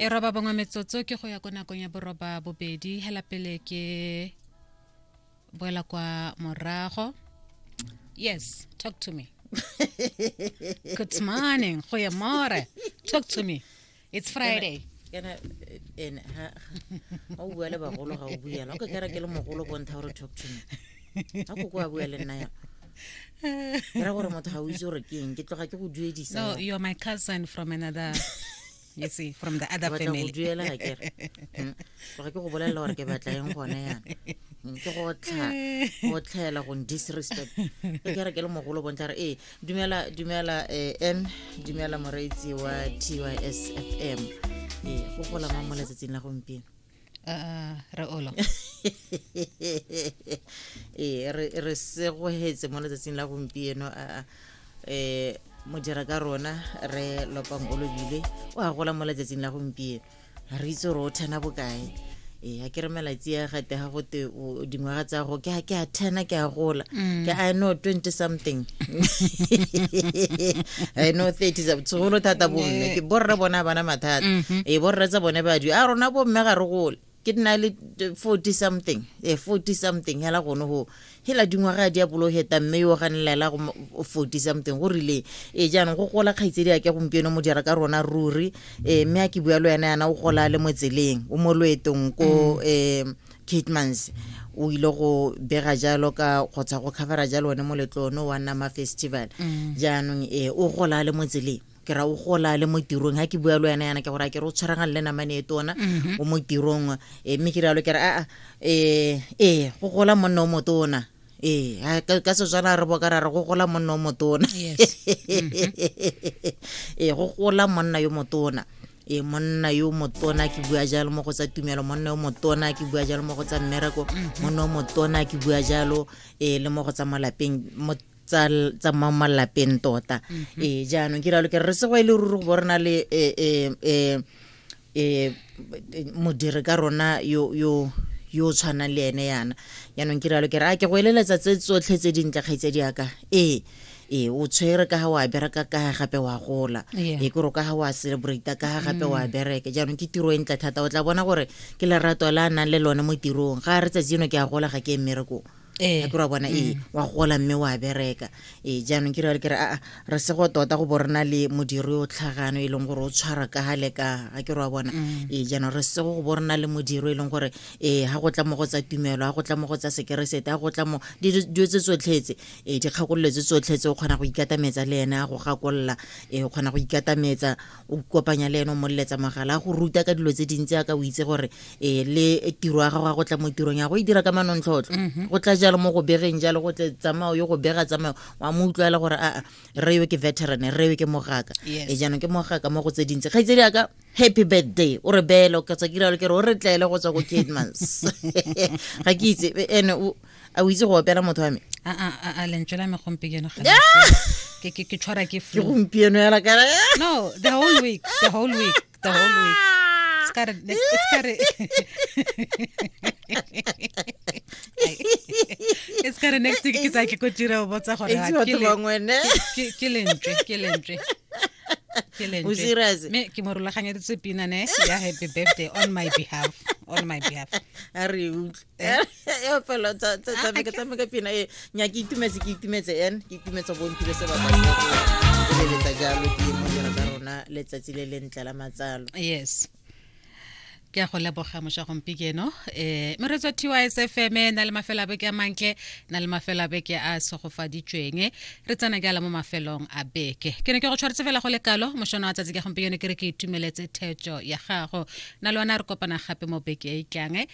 e roba bongwe metsotso ke go ya ko nakong ya boroba bobedi hela pele ke boela kwa morago yes talk to me good morning go ya more talk to me it's friday kana ene ha o bua le bagolo ga o buela o ke kera ke le mogolo bontsha gore talk to me ga ko ko a bua le nna ya ke ra gore motho ga o itse gore ke eng ke tloga ke go duedisa no you're my cousin from another you see from the other family duela ga ke re hmm. tloga ke go bolelela gore ke batla eng gone yana hmm, ke go tlha go tlhaela go disrespect e ke re ke le mogolo bontla re ee dumela dumela eh, n dumela moreitsi wa tysfm ee go golamang mo letsatsing la gompieno uh, re olo ee re segogetse mo letsatsing la gompieno a um mo dira ka rona re lopang o lobile o a gola mo letsatsing la gompieno re itse gore o thena bokae ee a ke re malatsi a gate ga gote o- dingwaga tsa go ke a ke a thena ke a gola ke i know 20 something i know 30 something segolo thata bomme ke borre bona bana mathata e borre tsa bone badi a rona bomme ga re gole ke nna le 40 something eh 40 something hela gone ho hela dingwaga di a boloheta mme yo ganelela go mo- 40 something go rile e jaanong go gola kgaitsedi a ke gompieno mo dira ka rona ruri eh mme a ke bua le wena yana o gola le mo tseleng o mo loetong ko eh Kitmans o ile go bega jalo ka kgotsa go covera jalo one moletlo one wa nama festival mm. jaanong e o gola le mo tseleng ke ra o gola le mo tirong ga ke bua le wena yana ke gore a ke re o tshwaragang le namane e tona mm-hmm. o mo tirong eh, mme ke rialo ke re aa ee eh, eh, go gola monna o motona ee ha, ka ka setswana re boka ra re go gola monna o motona Yes. ee go gola monna yo motona ee monna yo motona ke bua jalo mo go tsa tumelo monna yo motona ke bua jalo mo go tsa mmereko monna yo motona ke bua jalo ee le mo go tsa malapeng mo tsa tsa mo malapeng tota ee jaanong ke ralo ke re re sego e le ruri go bo re na le eh, eh, eh, e modiri ka rona yo yo yo tshwanang le ene yana yaanong ke rialo ke re a ke go eleletsa tse tsotlhe tse dintle kgaitse di yaka ee ee o tshwere ka ga wa bereka ka ga gape wa gola ee kore o ka ga wa celebrate ka ga gape wa mm. bereke jaanong ke tiro e ntle thata o tla bona gore ke lerato la a nang le lone mo tirong ga re tsatsi eno ke a gola ga ke e mmerekong Ee. a ke ra bona ee wa gola mme wa bereka ee jaanong ke rale ke re aa re se go tota go bo rena le modiri o tlhagano e leng gore o tshwara ka ga le ka ga ke re wa bona ee jaanong re se go go bo rena le modiri e leng gore ee ga go tla mo go tsa tumelo ga go tla mo go tsa sekeresete ga go tla mo dilo dilo tse tsotlhetse ee dikgakololo tse tsotlhetse o kgona go ikatametsa le ene a go gakolola ee o kgona go ikatametsa o kopanya le ene o moleletsa mogala go ruta ka dilo tse dintsi a ka o itse gore e le tiro ya gago ya go tla mo tirong ya go e dira ka manontlhotlho mhm. go tla jalo mo go begeng jalo go tle tsamao yo go bega tsamao wa mo utlwela gore aa re yo ke veteran re yo ke mogaka e jaanong ke mogaka mo go tse dintsi kgaitsedi yaka happy birthday o re beelo ka tswa ke ralo ke re o re tlaele go tswa ko kidmans ga ke itse ene a o itse go opela motho wa me a a a a lentswe la me gompieno ga le se. ke ke ke tshwara ke ke flu gompieno yala kara no the whole week the whole week the whole week Ska re- ne- ska re- Ai. e ska re next week ke tsa ke ko tira o botsa gore ha, itse ke batho le- bangwe ne ke- ke lentswe ke lentswe ke lentswe. O serious? me ke mo rulaganyeditse pina ne ya happy birthday on my behalf on my behalf a re e utlwe fela tsameka tsameka pina e nya ke itumetse ke itumetse en ke itumetse bo ntile se baba le letsa jalo ke mo jela ka rona letsatsi le lentle la matsalo yes ke a go leboga moša gompikeno um eh, meretswa tys fm e na le mafelo a beke a mantle na le mafelo a beke a segofaditsweng re tsena ke ala mo mafelong a beke ke ne ke go tshwaretse fela go le kalo mošono wa tsatsi ka gompikeno ke re ke itumeletse thetso ya gago na le ona re kopana gape mo beke e tlange